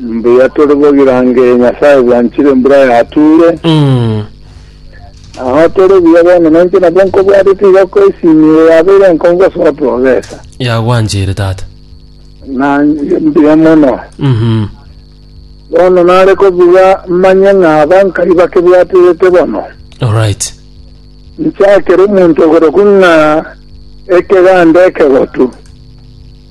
Mbuya tore bogirange Nyasae bwanchire embura yatuure. Agho tore buya bono nainche nabwo nkobwatete iga ko esimi eye yabeire enkongo ase otoogesa. Yagwanchire tata. Na mbuya mono. Mhm. Bono nare kobuga manye ng'a abankai bakebwaterete bono. Alright. Nchakere omonto oborokwo ng'a ekeganda ekegotu.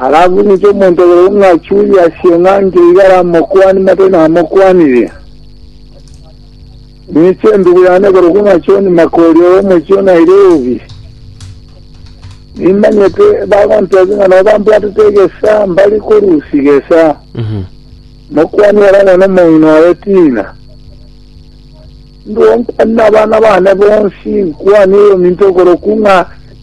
Arakunete omonto oyomo ng'a achurie asio ng'a nkeire aramokwani mate namokwanirie. Ninche endubu yane ekorokwa ng'a John Mark oria omochie o Nairobi. Nimanyete bagontebia ng'a nabo bambwatete egesa mbare korusia egesa. Mokwani ore amo nomong'ina oye Tina. Nduo nkwani nabana bane bonsi, nkwani oyominto okorokwa ng'a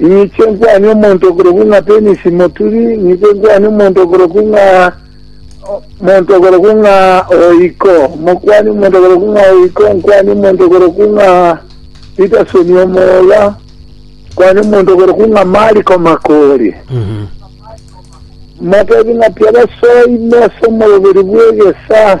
Ninche nkwane omonto okorokwa ng'a Denisi Moturi, ninche nkwane omonto okorokwa ng'a omonto okorokwa ng'a Oiko, mokwane omonto okorokwa ng'a Oiko, nkwane omonto okorokwa ng'a Pitasoni omoga, nkwane omonto okorokwa ng'a Mariko Makori. Motebie ng'a tiabasoime ase omoroberi bw'egesa,